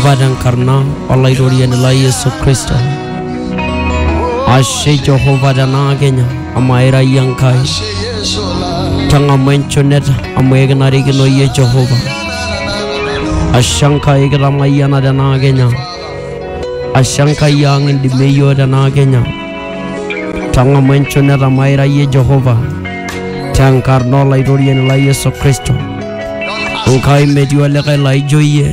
Baba tenkarna olaitoriani lai Yesu Kristo. Ashe Jehova tenaa Kenya amu aira iyie Enkai. Tang'amu enchoneta amu ekinarikino iyie Jehova. Ashe Enkai kitamayiana tenaa Kenya. Ashe Enkai ang indimie iyiook tenaa Kenya. Tang'amu enchoneta amu aira iyie Jehova. Tenkarna olaitoriani lai Yesu Kristo. Enkai metii olikae laijo iyie.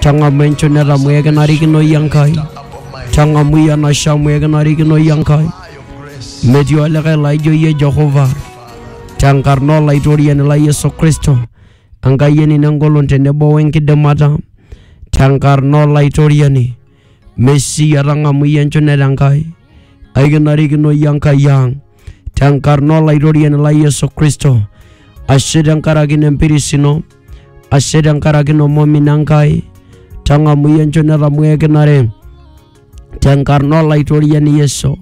Tang'amu enchunet amu ekinarikino iyie Enkai. Tang'amu iyie enashe amu ekinarikino iyie Enkai. Metii olikae laijo iyie Jehova. Tenkarna olaitoriani lai Yesu Kristo, Enkai enino engolon tenebo wenkidimata. Tenkarna olaitoriani, Mesia tang'amu iyie enchunet Enkai. Aikinarikino iyie Enkai ang. Tenkarna olaitoriani lai Yesu Kristo, ashe tenkaraki ina empiris ino. ashe tenkaraki ina omomino Enkai, tang'amu iyie enchoni etamoo ekinare tenkarna Olaitoriani Yesu.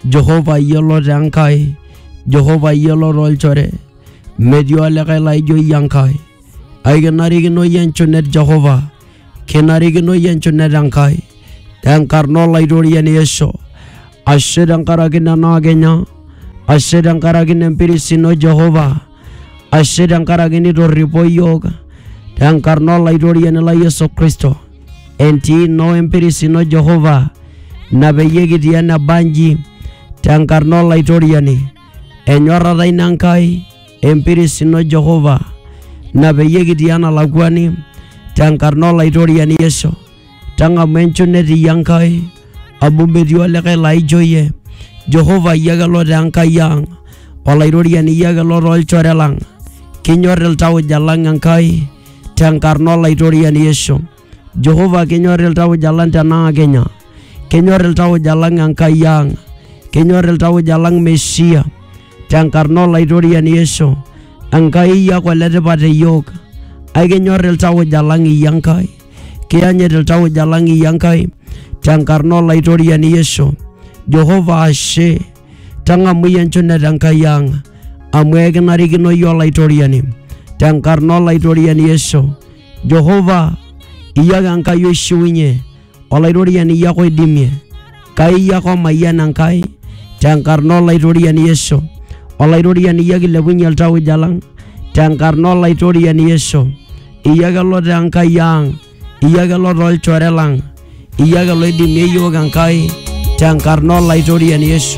Jehova iyiolo te Enkai, Jehova iyiolo tolchore, metii olikae laijo iyie Enkai. Aikinarikino iyie enchunet Jehova, kinarikino iyie enchunet Enkai tenkarna Olaitoriani Yesu. ashe tenkaraki nena kenya ashe tenkaraki nempiris ino jehova ashe tenkaraki nitorripo iyiook tenkarna olaitoriani la yesu kristo entii ino empiris ino jehova ina peyie kitii eneba nji tenkarna olaitoriani enyorrata ino enkai empiris ino jehova ina peyie kitii enalakuani tenkarna olaitoriani yesu tang'amu enchunet iyie Enkai amu metii olikae laijo iyie. Jehova iyie ake lo taa Enkai ang', Olairoriani iyie ake lo too lchore lang'. Kinyor iltauja lang' Enkai tenkarna Olaitoriani Yesu. Jehova kinyor iltauja lang' tenaa kinya. Kinyor iltauja lang' Enkai ang'. Kinyor iltauja lang' Mesia tenkarna Olaitoriani Yesu. Enkai iyie ake oletipat te iyiook. Aikinyor iltauja lang' iyie Enkai. Kiyanyit iltauja lang iyie Enkai tenkarna Olaitoriani Yesu. Jehova ashe, tang'amu iyie enchunet Enkai ang amu ekinarikino iyie Olaitoriani tenkarna Olaitoriani Yesu. Jehova, iyie ake Enkai oishiunye, Olaitoriani iyie ake oidimie. Kai iyie ake omayian Enkai tenkarna Olaitoriani Yesu. Olaitoriani iyie ake ilepunye iltauja lang tenkarna Olaitoriani Yesu. Iyie ake lotaa Enkai ang, iyie ake lotaa olchore lang, iyie ake loidimie iyiook Enkai tenkarna Olaitoriani Yesu.